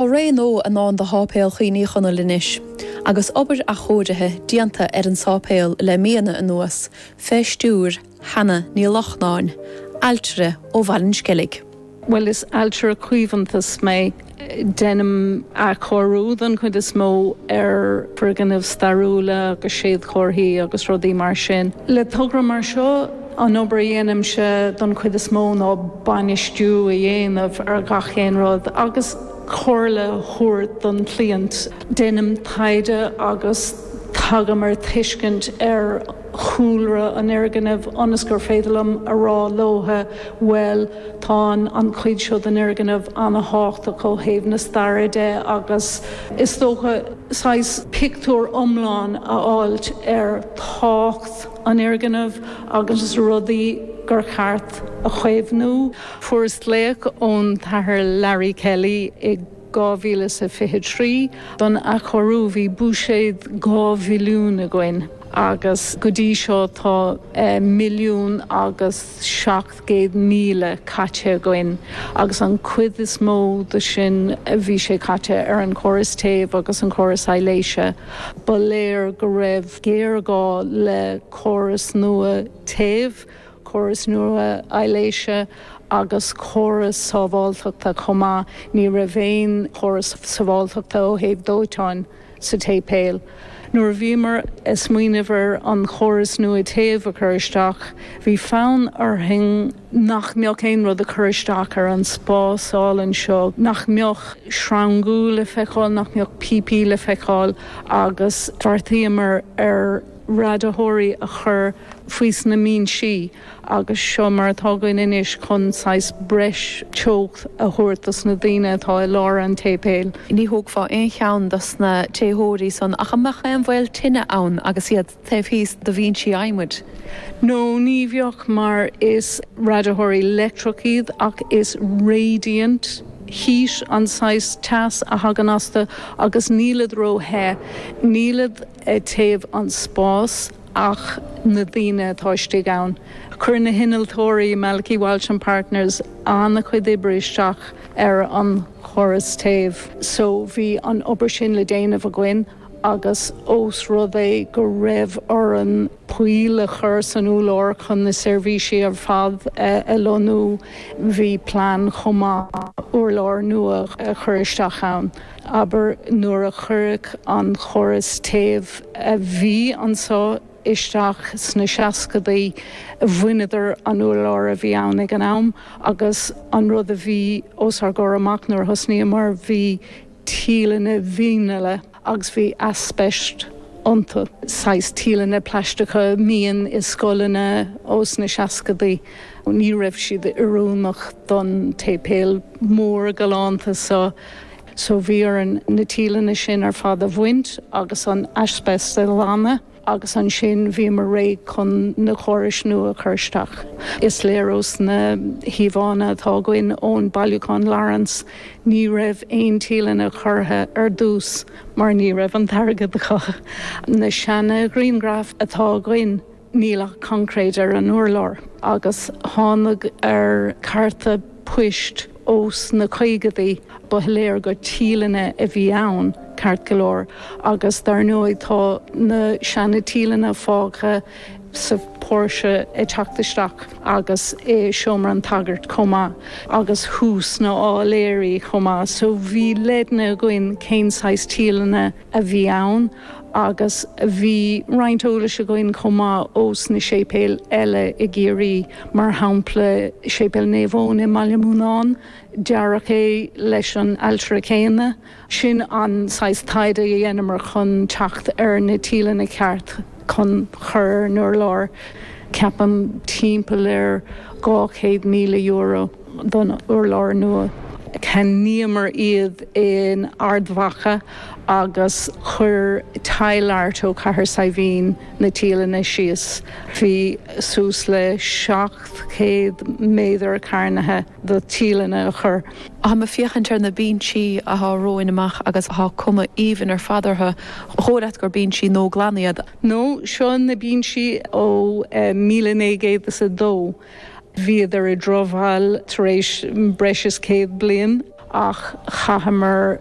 Tá ré nua i ndán do Sháipéal Chuimhneacháin Uí Chonaill anois. Agus obair athchóirithe déanta ar an sáipéal le míonna anuas, fé stiúir Kenna Ní Lochnáin, ailtire ó Bhaile an Sceilg. Bhuel, is ailtire caomhantais mé. Deinim athchóiriú, don chuid is mó, ar foirgnimh stairiúla agus séadchomharthaí agus rudaí mar sin, le togra mar seo. An obair a dhéanaimse don chuid is mó ná bainistiú a dhéanamh ar gach aon rud agus comhairle a thabhairt don chliant. Déanaim taighde agus tagaim ar tuiscint ar chúlra an fhoirgnimh ionas gur féidir liom a rá leo, bhuel, tá an chuid seo den fhoirgneamh an-thábhachtach ó thaobh na staire de agus is dócha saghas pictiúr iomlán a fháil ar tábhacht an fhoirgnimh agus na rudaí gur cheart a chaomhnú. Fuarthas glaoch ón tAthair Larry Kelly i 2023 don athchóiriú. Bhí buiséad dhá mhilliún againn agus go dtí seo tá milliún agus gcéad míle caite againn agus an chuid is mó de sin bhí sé caite ar an chóras téimh agus an chóras soilsithe. Ba léir go raibh géarghá le córas nua téimh, córas nua soilsithe agus córas sábháilteachta chomh maith. Ní raibh aon chóras sábháilteachta ó thaobh dóiteáin. sa tSéipéal. Nuair a bhíomar ag smaoineamh ar an chóras nua téamh a chur isteach, bhí fonn orainn nach mbeadh aon rud ag cur isteach ar an spás álainn seo, nach mbeadh sreanga le feiceáil, nach mbeadh píopaí le feiceáil agus bheartaíomar ar radaitheoirí a chur faoi sna mbinsí. agus seo mar atá againn anois chun saghas breis teocht a thabhairt dos na daoine atá i lár an tséipéil. Ní thógfá aon cheann dos na téitheoirí san ach a mbeadh aon bhaol tine ann agus iad taobh thíos do bhinsí adhmaid. No, ní bheadh mar is radaitheoirí leictreacha iad ach is radiant heat an saghas teas a thagann astu agus nílid róthe, nílid ag téamh an spás. ach na daoine atá istigh ann. Chuir na hinnealtóirí, Malachy Walsh and Partners, an-chuid oibre isteach ar an chóras téimh. So bhí an obair sin le déanamh againn agus ós rud é go raibh orainn poill a chur san urlár chun na seirbhísí ar fad a lonnú, bhí plean chomh maith urlár nua a chur isteach ann. abair nuair a cuireadh an córas téimh a bhí anseo isteach sna seascaidí, bhaineadar an úrlár a bhí ann ag an am agus an rud a bhí os ár gcomhair amach nuair a thosnaíomar, bhí tíleanna vinile agus bhí aispeist iontu, saghas tíleanna plaisteacha a bhíonn i scoileanna ós na seascadaí. Ní raibh siad oiriúnach don tséipéal mór galánta seo. So bhí orainn na tíleanna sin ar fad a bhaint agus an aispeist a ghlanadh agus ansin bhíomar réidh chun na córais nua a chur isteach. Is léir ós na híomhánna atá againn ón mbailiúchán Lawrence ní raibh aon tíleanna curtha ar dtús mar ní raibh an t-airgead acu. Na seana ghrianghraif atá againn, níl ach concréid ar an urlár agus thánag ar chárta poist ós na caogaidí ba shoiléir gur tíleanna a bhí ann ceart go leor agus dar ndóigh tá na seana tíleanna fágtha sa póirse ag teacht isteach agus i seomra an tsagairt chomh maith agus thuas sna háiléirí chomh maith so bhí leideanna againn cén saghas tíleanna a bhí ann. agus bhí roinnt eolais againn chomh maith ós na séipéil eile i gCiarraí, mar shampla Séipéal Naomh Eoin i mBaile an Bhuinneánaigh, dearadh é leis an ailtire céanna. Sin an saghas taighde a dheineamar chun teacht ar na tíleanna ceart chun chur ar an urlár, ceapaim timpeall ar €200,000. don urlár nua. Cheannaíomar iad in Ard Mhacha agus chuir Tile Art ó Chathair Saidhbhín na tíleanna síos. Bhí suas le 700 méadar cearnaithe do thíleanna le cur. Táim ag féachaint ar na bínsí athá romhainn amach agus tá cuma aoibhinn ar fad orthu. Ba dhóigh leat gur bínsí nó glan iad. No seo na bínsí ó míle naoi gcéad is a dó. Bhíodar i dtrobhal tar éis breis is céad bliain ach chaitheamar